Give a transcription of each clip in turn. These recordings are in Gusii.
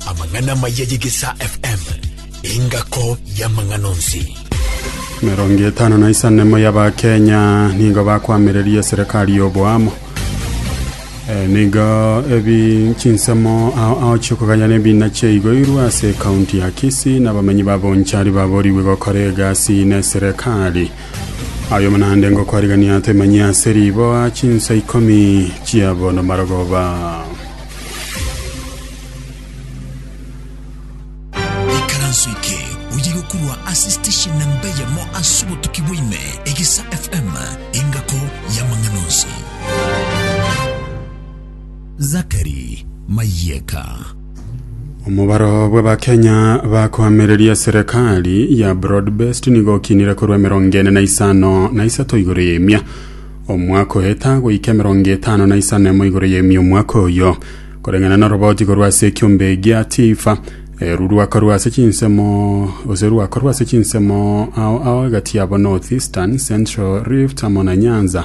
Amang'ana amaya y'Egesaa FM, engako y'amang'ana onsi. Mirongo etano na isanemo y'Abakenya nigo bakwamireria serikali y'oboamo Eh, nigo ebi chinsemo ao ao chiokoganyana ebina chiaigoirwe ase ekaunti ya Kisii na abamenyi ba Bonchari baborigwe gokora egasi ne serikali Ayomo naende ngokoarigania temanyia ase riboa chinsa ikomi chia bono marogoba. ikaranso eke oye gokorwa ase station namba eyemo ase obotuki bwaime egesa fm engako y'amang'ana onsi zakari mayeka Omobaro bw'Abakenya bakoamereria serikali ya broad based nigo okinire korwa emerongo ene na isano na isato igoro y'emia omwaka oheta goika emerongo etano na isano emo igoro y'emia omwaka oyo koreng'ana na oroboti korwa ase ekiombe gia tifa eru rwakorwa ase chinsemo ose rwakorwa ase chinsemo ao ao egati yabo north eastern central rift amo na nyanza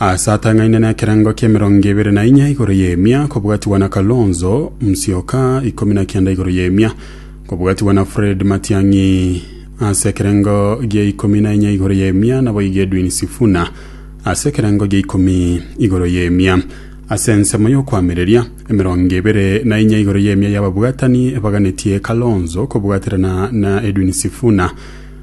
Aase atang'aine nekerengo ki'emerongo ebere na inya igoro y'emia kobwatigwa na Kalonzo Musyoka, ikomi na kenda igoro y'emia kobwatigwa na Fred Matiang'i, aase ekerengo gia ikomi na inya igoro y'emia naboigo Edwin Sifuna aase ekerengo gia ikomi igoro y'emia. Ase ensemo y'okoamereria, emerongo ebere na inya igoro y'emia y'ababwatani ebaganetie Kalonzo kobwaterana na Edwin Sifuna,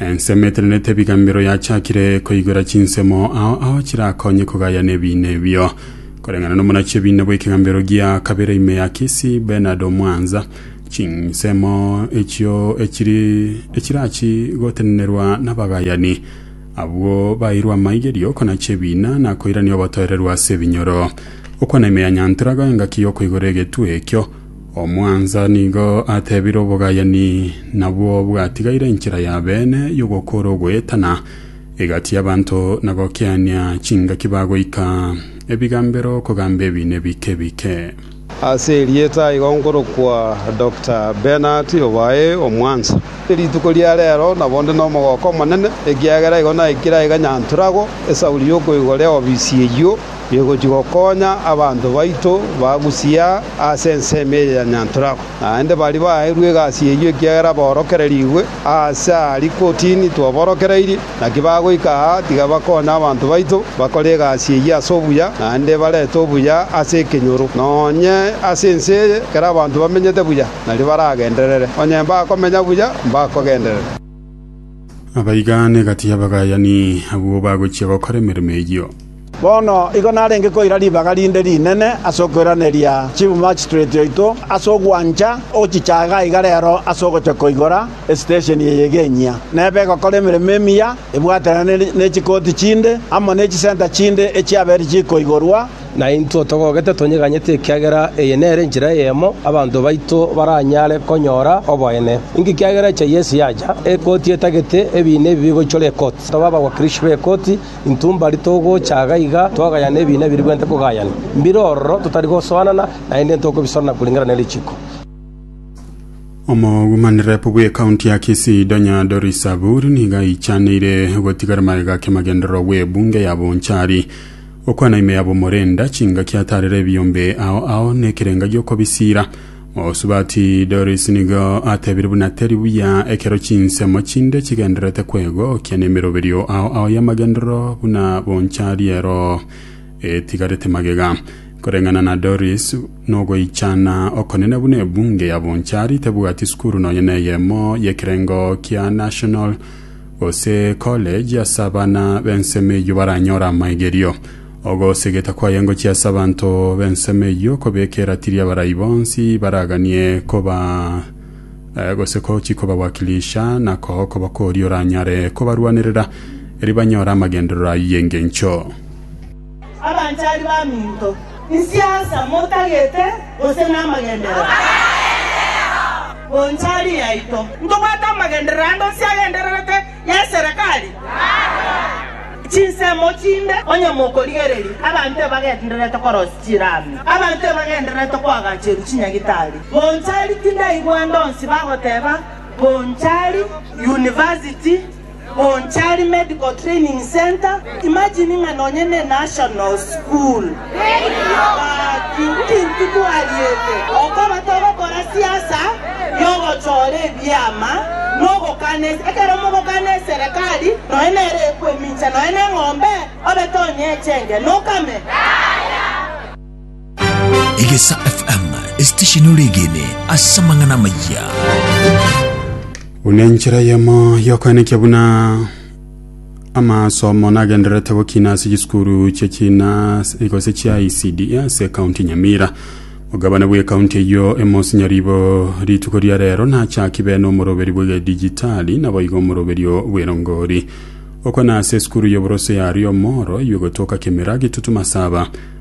Ensemo etenenete ebigamero yachakire koigwera chinsemo ao ao chirakonye kogayana ebiina ebio. Koreng'ana nomonachie ebiina bw'ekegambero gia kabere ime ya Kisii, Bernard Omwanza, chinsemo echio echiri echirachi gotenenerwa nabagayani abwo baeirwe amaigerio okonacha ebiina na koirania obotoereru ase ebinyoro. Gokwana ime ya Nyantura, goa engaki y'okoigora egetwe ekio, Omwansa nigo atebire obogayani, nabwo bwatigaire enchera ya beene y'ogokora ogoetana egati y'abanto na gokiania chingaki bagoika ebigambero kogamba ebiina ebike bike. Ase erieta igo nkorokwa Doctor Bernard obae omwansa. Rituko ria reero nabo nde nomogooko omonene, ekiagera igo naikire aiga Nyanturagwa, esauri y'okoigoria ofisi eyio. Bigochia gokonya abanto baito bagusia ase ensemo eye ya Nyanturabo. Naende baria baaeirwe egasi eyio ekiagera baorokererigwe aase aaria kotini twaborokereirie, naki bagoika aa tiga bakonye abanto baito bakore egasi eyio ase obuya, naende barete obuya ase ekenyoro. Nonye ase ense eye ekero abanto bamenyete buya, nario baragenderere. Onye mbakomenya buya, mbakogenderera. Abaigane egati y'abagayani abwo bagochia gokora emeremo eyio. Bono igo narenge koira ribaga rinde rinene ase okoiraneria chibumachitoreti oito ase ogwancha ogochichaga aiga rero ase ogocha koigora esitesheni eye eg'enyia, neba egokora emeremo emiya ebwatanire ne chikoti chinde amo ne chisenta chinde echiabere chikoigorwa, Naintwe togogete tonyeganyete ekiagera eye nere enchera eyemo abanto baito baranyare konyora oboene. Inki ekiagera echa Yeso yacha? Ekoti etagete ebiina ebi bigoichora ekoti. Tobe abagwakirishi b'ekoti, intwe mbari togocha iga iga twagayane ebiina ebi ribwenerete kogayana. Mbire ororo totari gosoanana, naende ntokobisoroana koringana ne richiko. Omogumani rep bw'ekaunti ya Kisii Donya Doris Aburi nigo aichaneire gotigara magega kiamagenderero gw'ebunge ya Bonchari. Gokwana ime yabo morenda chingaki atarera ebiombe ao ao nekerenga giokobisiira. Mosubati Doris nigo atebire buna teri buya ekero chinsemo chinde chigendererete kwegokia nemeroberio ao ao y'amagenderero buna boncha riero etigarete magega. Koreng'ana na Doris, nogoichana okonene buna ebunge ya boncha ritabwati sukuru nonya neyemo y'ekerengo kia National gose college ase abana b'ensemo eyio baranyore amaigerio. Ogosegeta kwaye ngochia ase abanto b'ensemo eyio kobeka eratiri abarai bonsi baraganie koba eh, gose ko chikobawakilisha na koo koba koria oranyare kobarwanerera eri banyore amagenderero ayio y'engencho. Abanchari baminto, inse asa motagete gose namagenderero? Bonchari yaito, ntobwate amagenderero ande onsi agendererete y'eserekari? Chinsemo chinde onye mokorigereria, abanto ebagendererete korosia chiraami, abanto ebagendererete koagacheru chinyagitari. Bonchari tindaigwande onsi bagoteba, Bonchari, University. Bonchari Medical Training Centre, imagine ng'a nonye ne National School. Gaki intwe twariete okoba togokora siasa yogochora ebiama na ogokana ese. Ekero mogokana eserekari nonye nere ekoemincha nonye neng'ombe obe tonyeche engenokame. Egesa FM, esitesheni oregene ase amang'ana amayia. buna enchera yemo yokoenekia buna amasomo nagendererete gokina ase chisukuru chia china igose chia ecd ase kaunti nyamira ogabane bwa ekaunti eyo emosinyaribo rituko ria rero nachakibene omoroberi bw'egedijitali naboiga omoroberio bw'erongori okona ase esukuru y'oborose yario omoro iwe gotoka kemera gitutu masaba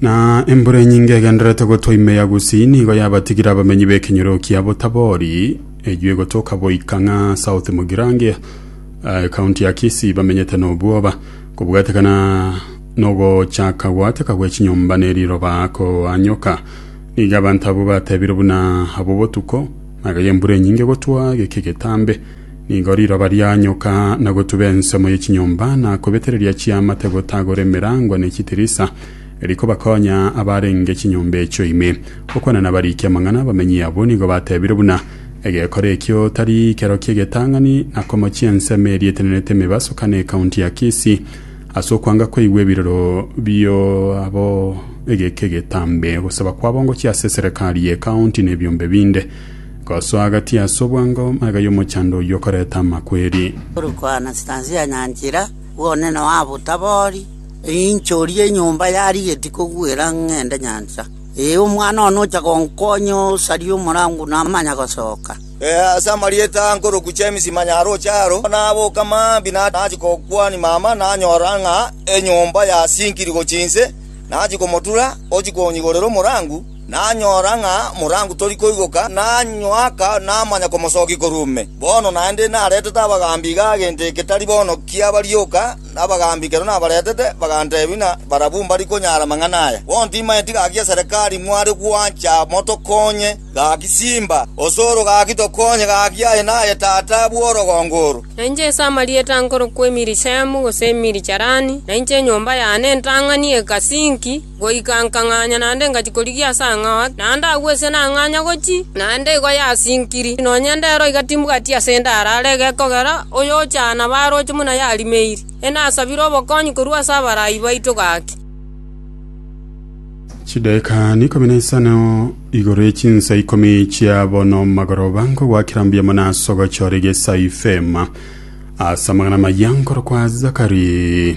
Na embura enyinge egendererete gotwa ime ya Gusii nigo yabatigire abamenyi b'ekenyoro kia Botabori, eyio egotoka goika ng'a South Mugirange, eh, county ya Kisii, bamenyete n'obwoba, kobwatekana n'ogochaka goateka gwe chinyomba ne riroba koanyoka. Nigo abanto abwo batebire buna abo botuko, magega embura enyinge gotwa geke getambe. Nigo riroba rianyoka na gotuba ensemo ye chinyomba na kobetereria chiamate gotagora emerango ne chitirisa, eri kobakonya abarenge chinyomba echio ime. Okwana nabarikia amang'ana abamenyi abwo nigo batebire buna, Egekora ekio tari kero ki'egetang'ani na komochia ensemo eria etenenete emebaso kane ekaunti ya Kisii ase okwanga koigwa ebiroro bio abo egeka egetambe. Ogosaba kwabo ngochia ase eserekari ye ekaunti nebiombe binde. Gosoa agati ase obwango magega y'omochando oyio okoreta amakweri. Tori koana chitansi ya nyanchera, bwone noa botabori, einchorie enyomba ya rigeti kogwera ng'ende nyancha. Ee, omwana one ocha gonkonya osarie omorango namanya gosoka. Ee, ase amarieta nkoroku James manya aroche aro, naboka mambia nachia gokwania mama nanyora ng'a enyomba yasinkiri gochia inse, nachia komotura ochia konyigorera omorango. Nanyora ng'a morangu tori koigoka, nanywaka namanya komosokia korwa ime. Bono naende naretete abagaambi iga gento eke tari bono kiaba rioka, abagaambi ekero nabaretete bagantebia ng'a barabwo mbari konyara amang'ana aya. Bono timaeti gaki ya Serekari mware gwancha motokonye gaki simba, osoro gaki tokonye gaki aye naye tata bw'orogongo oro. Na inche ase amarieta nkorokwa Emirishaimu, gose Emirijarani, na inche enyomba yane ntang'ani egasinki. Goika nkang'anya naende ngachia korigia ase ang'ao ake, naende agwo ise nang'anya gochia, naende igo yasinkiri, nonya ndero igatimbugati ase ende arare egekogera oyochana baroche buna yarimeiri. Enasabire obokonyi korwa ase abarai baito gaki. Chidaeka n'ikomi na isano igoro ye chinsa ikomi chia bono magoroba nkogwakera mbuya mono ase ogochora egesao ifeema ase amang'ana amaya nkorokwa Zakari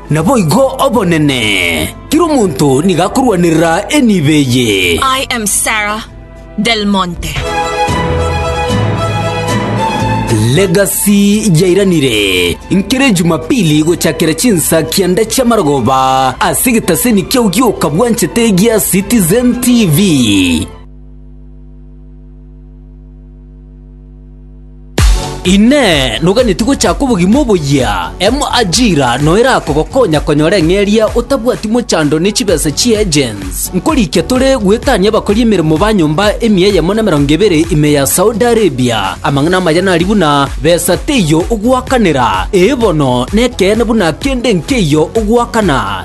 Naboigo obonene, kera omonto nigo akorwanerera enibo eye. I am Sarah Del Monte. Legacy yairanire nkere Jumapili gochakera chinsa kianda chi'amarogoba ase egetaseni kiao gioka bwanchete gia Citizen TV. Inee! Noganetie gochaka obogima oboyia? Emo Ajira no erakogokonya konyora eng'eria otabwati mochando ne chibesa chi agents. Nkorikia tore gwetania abakori emeremo ba nyomba emia eyemo na emerongo ebere ime ya Saudi Arabia. Amang'ana amaya nari buna, Besa teiyo ogwakanera. Ee bono, nekeene buna kende nkeiyo ogwakana.